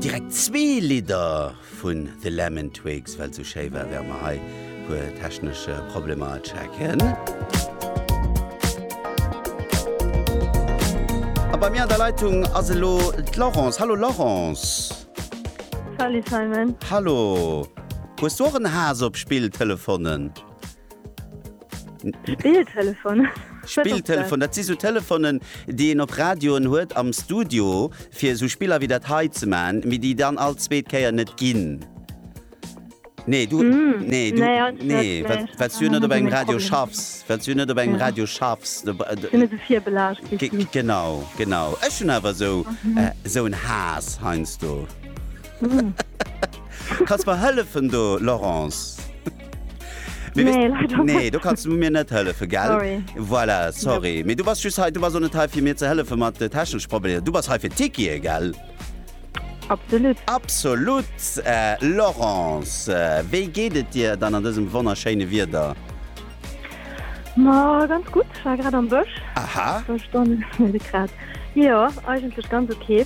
Direkt zwee Lidder vun The Lemon Twigs, well et sou schéi war, während mer hei e puer technesch Problemer checken. A bei mir an der Leitung ass elo d'Laurence. Hallo Laurence. Salut Simon. Hallo. Hues du och en Haass op Spilltelefonen? Spilltelefon. Spilltelefon, dat si so Telefonen, déi een op Radioen huet am Studio, fir so Spiller wéi dat hei ze man, mee déi dann all zweet Kéier net ginn. Nee du mm, nee, du, nee, nee, nee, wat, wat du net op engem Radio schaffs, wat du net op engem Radio schaffs Genau genau Ech hun awer so mhm. äh, so en Has heinsst du. Mm. Kas war hëllefen do Laurence. Mir Nee, leider wis- nee, du kannst du mir net hëllefe gell? Sorry. Voilà, sorry. Mee du bass just hei, du bass net hei fir mir ze hëllefe mat de technesch Problemer. Du bass hei fir Tikie, gell? Absolut. Absolut, äh, Laurence, äh, wéi geet et dir dann an dësem wonnerschéine Wieder? Ma ganz gut, war grad am Bësch. Aha. Sto Stonne grad. Jo, eigentlech ganz okay.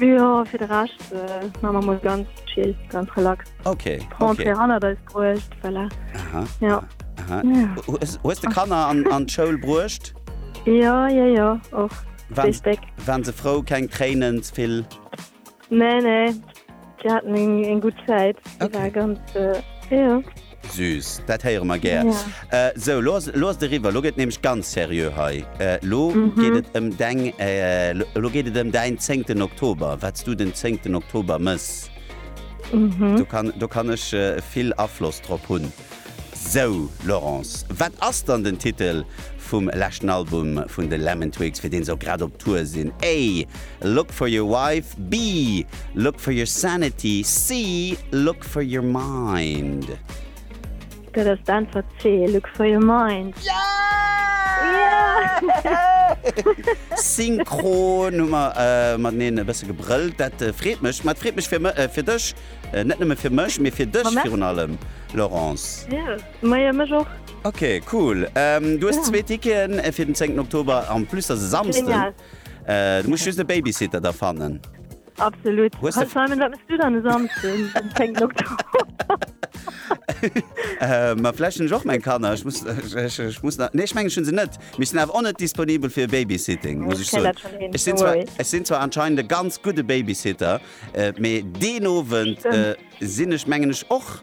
Jo, fir de Rescht man mer mol ganz chill, ganz relax. Ok. D'Rentrée hannert eis bruecht, voilà. Aha. Jo. Aha. Hues de Kanner an d'Schoul bruecht? Jo, jo, jo, och. Richteg. Waren se frou? Keng Tréinen? Ze vill? Nee, nee, si haten eng gutt Zäit. Ok. Déi war ganz, jo. Süß, dat héiere mer gär. Sou, lo ass lo ass et eriwwer. Lo gëtt et nämlech ganz seriö hei. Lo geet et ëm deng, lo geet et ëm däin zéngten Oktober, wat s du den zéngten Oktober mëss. Do kann, do kann ech vill Afloss drop hunn. Sou, Laurence, wat ass dann den Titel vum leschten Album vun de Lemon Twigs, fir dee se och grad op Tour sinn? A. Look for your wife, B, Look for your sanity, C, Look for your mind. Dat ass d'Äntwert C, Look for your mind. Synchron hu mer äh, mateneen e bësse gebrëllt. Dat äh, freet mech. Mat freet mech fir, äh, fir dech, äh, net nëmme fir mech, mee fir dech virun allem, Laurence. Ja, meier mech och. Okay, cool. Ähm, du hues zwee Ticketen äh, fir den 10. Oktober, en plus ass e Samsden. Genial. Du muss just e Babysitter da fannen. Absolut. Hues de- Simon, wat mest du dann e Samsden? Den 10. Oktober. Äh, ma vläch hunn ech och meng Kanner. Ech muss, ech, ech muss nach, nee, ech mengen, ech hunn se net. Mir sinn awer och net disponibel fir Babysitting, muss ech soen. Ech sinn zwar, ech sinn zwar anscheinend e ganz gudde Babysitter, äh, mee deen Owend, äh, sinn ech, mengen ech, och.